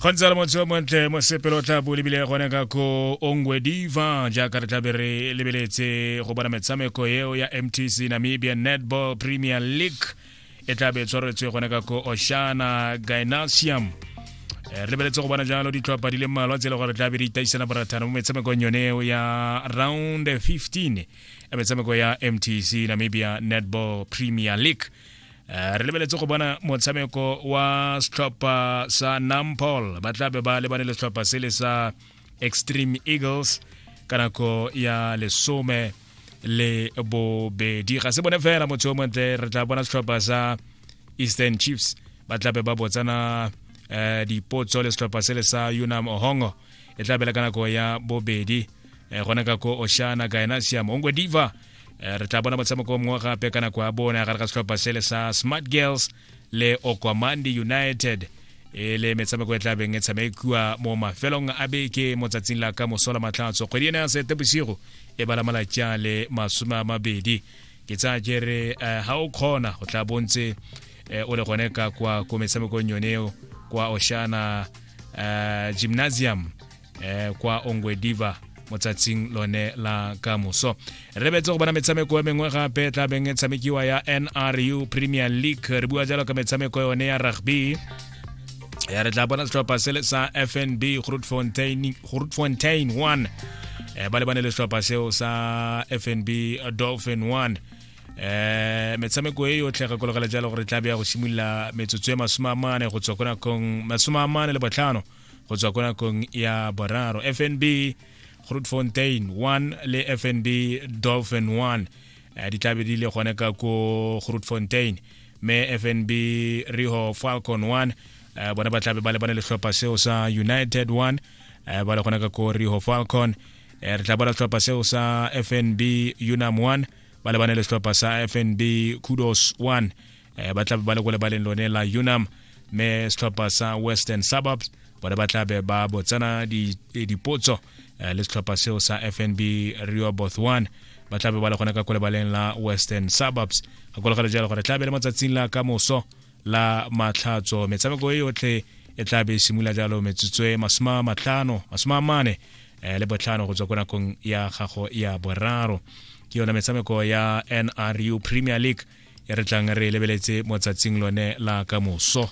go ntse le motse o montle mosepelo o tla bo lebile gone ka ko ongwe diva jaaka re tlabe re lebeletse go bona metshameko eo ya mtc namibia netball premier league e tlabe e tshwaretswe gone ka ko oshana gynasium Eh, re lebeletse go bona jalo ditlhopha di le mmalwa tse e le gore tlabe di itaisana borathana mo metshamekong yone eo ya round 15 ya metshameko ya mtc namibia netball premier league Eh, re lebeletse go bona motshameko wa setlhopha sa nampol ba tla be ba lebane le setlhopha se le sa extreme eagles ka nako ya lesome le bobedi ga se bone fela motho o montle re tla bona setlhopha sa eastern chiefs ba tla be ba botsana um dipotso le setlhopha se le sa unam ohongo e tla bela ka nako ya bobedi um gona ka ko oshana gaena siamo ongwe diva eh, re tla bona motshameko mongwe gape ka nako ya bona gare ga setlhopha sele sa smart girls le okwamandi united e le metshameko e tla beng e tshamekiwa mo mafelong a beke mo tsatsing la ka mosola matlhatso kgwedi ena ya sete bosigo e bala malatsi a le masome a mabedi ke tsaya ke re ga eh, o kgona go tla bontse eh, o le gone ka kwa ko metshamekong yone eo kwa oshana eh, gymnasium eh, kwa ongwediva mo tsatsing lone la ka moso re betse go bona metshameko e mengwe gape tla beng e tshamekiwa ya nru premier league re bua jalo ka metshameko yone ya rugby ya re tla bona setlhopha sele sa fnb grootfontein 1 eh, ba lebane le setlhopha seo sa fnb dolphin 1 eh metshameko e yotlhe gakologela jalo gore tla be ya go simolola metsotso e masome a mane go tswa ko nakong masome a mane le botlhano go tswa ko nakong ya boraro fnb grootfontein 1 le fnb dolphin 1 eh, di tlabe di le gone ka ko grootfontein me fnb riho falcon 1 eh, bona ba tlabe ba lebane letlhopha seo sa united 1 eh, ba le gone ka ko riho falcon re tla bona setlhopha seo sa fnb unam 1 ba lebane le setlhopha sa fnb kudos 1 um ba tlabe ba le ko lebaleng lone la unam mme setlhopha sa western suburbs bone ba tlabe ba botsana eh, dipotso eh, le setlhopha seo sa fnb rio bothwan ba tlabe ba le gone ka ko lebaleng la western suburbs ga kologelo jalo gore tlabe le mo tsatsing la ka moso la matlhatso metshameko e yotlhe e tlabe e simolola jalo metsotso e masome a matlhano masome a mane um le botlhano go tswa ko nakong ya gago ya boraro ke yone metshameko ya nru premier league e re tlang re e lebeletse mo tsatsing lone la kamoso